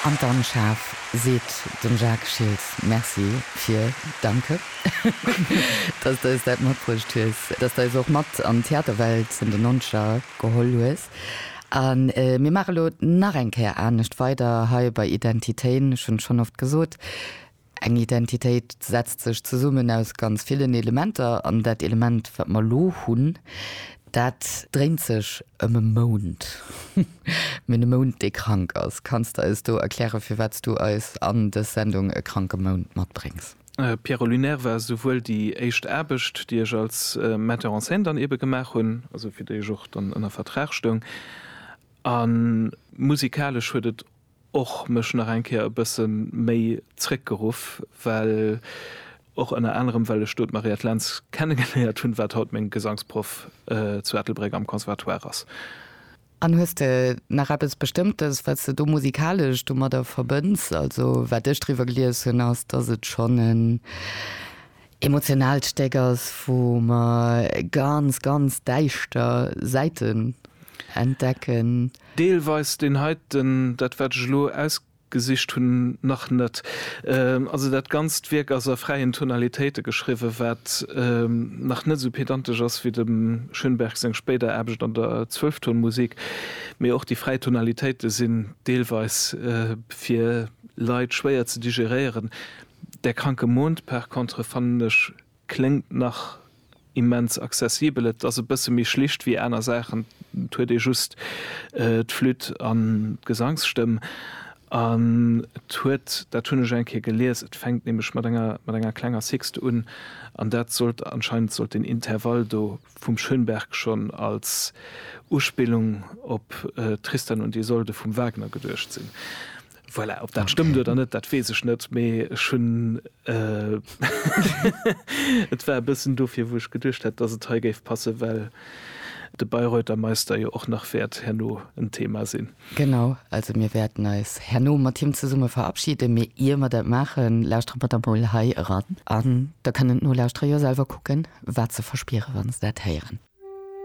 An dann schaarf seet dem Jacques Schiltz Merci fir, danke, dass de eis dat matbruecht hues, dass de eis och mat an d'Theaterwelt vun den Nonzeger geholl hues. A mir maache lo nach eng Kéier anescht weider hei bei Identitéen. Ech hunn schonn oft gesot, Eng Identitéit setzt sech zesummen aus ganz villen Elementer an dat Element, wat mer elo hunn, dat dréint sech ëm e Mound. Mir hunn e Mound, dee krank ass. Kanns de eis do erklären, firwat s du eis an dës Sendung e kranke Mound matbréngs? Pierrot Lunaire war souwuel déi éischt Aarbecht, déi ech als Metteur en scène dann eebe gemaach hunn, also fir déi ech och dann ënner Vertrag stoung, a musikalesch huet et och mech nach eng Kéier e bësse méi zréckgeruff, well och ënner anerem well ech do d'Mariette Lentz kennegeléiert hunn, wat haut meng Gesangsproff zu Ettelbréck am Conservatoire ass. An hues de nach eppes Bestëmmtes, wat s de do musikalesch domadder verbënns? Also wat ech driwwer gelies hunn, ass, dass et schonn en Emotionaalt Stéck ass, wou mer ganz, ganz däischter Säiten entdecken. Deelweis deen heiten, dat wat ech elo ausgesicht hunn, nach net. Also dat ganzt Wierk ass a fräien Tonalitéite geschriwwen, wat nach net esou pedantesch ass wéi dem Schönberg seng spéider Aarbecht an der Zwölftonmusik. Mee och déi fräi Tonalitéite sinn deelweis fir Leit schwéier ze digéréieren. Der kranke Mond par contre fannen ech kléngt nach immens accessibel. Et ass e bësse méi schlicht wéi aner Saachen, et huet ee just d'Flütt an d'Gesangsstëmm an et huet, dat hunn ech eng Kéier gelies, et fänkt nämlech mat enger mat enger klenger Sixte un an dat sollt anscheinend sollt deen Intervall do vum Schönberg schonn als Uspillung op Tristan und Isolde vum Wagner geduecht sinn. Voilà, ob dat stëmmt oder net, dat weess ech net, mee ech hunn et war e bëssen dofir, wou ech geduecht hätt, dass et hei géif passen, well de Bayreuther Meister jo och nach wäert herno en Thema sinn. Genau, also mir wäerten eis herno mat him zesumme verabschiden, mee ier mer dat maachen, lauschtere mer da mol hei eran an da kënnen d'Nolauschterer jo selwer kucken, wat se verspieren, wa se dat héieren.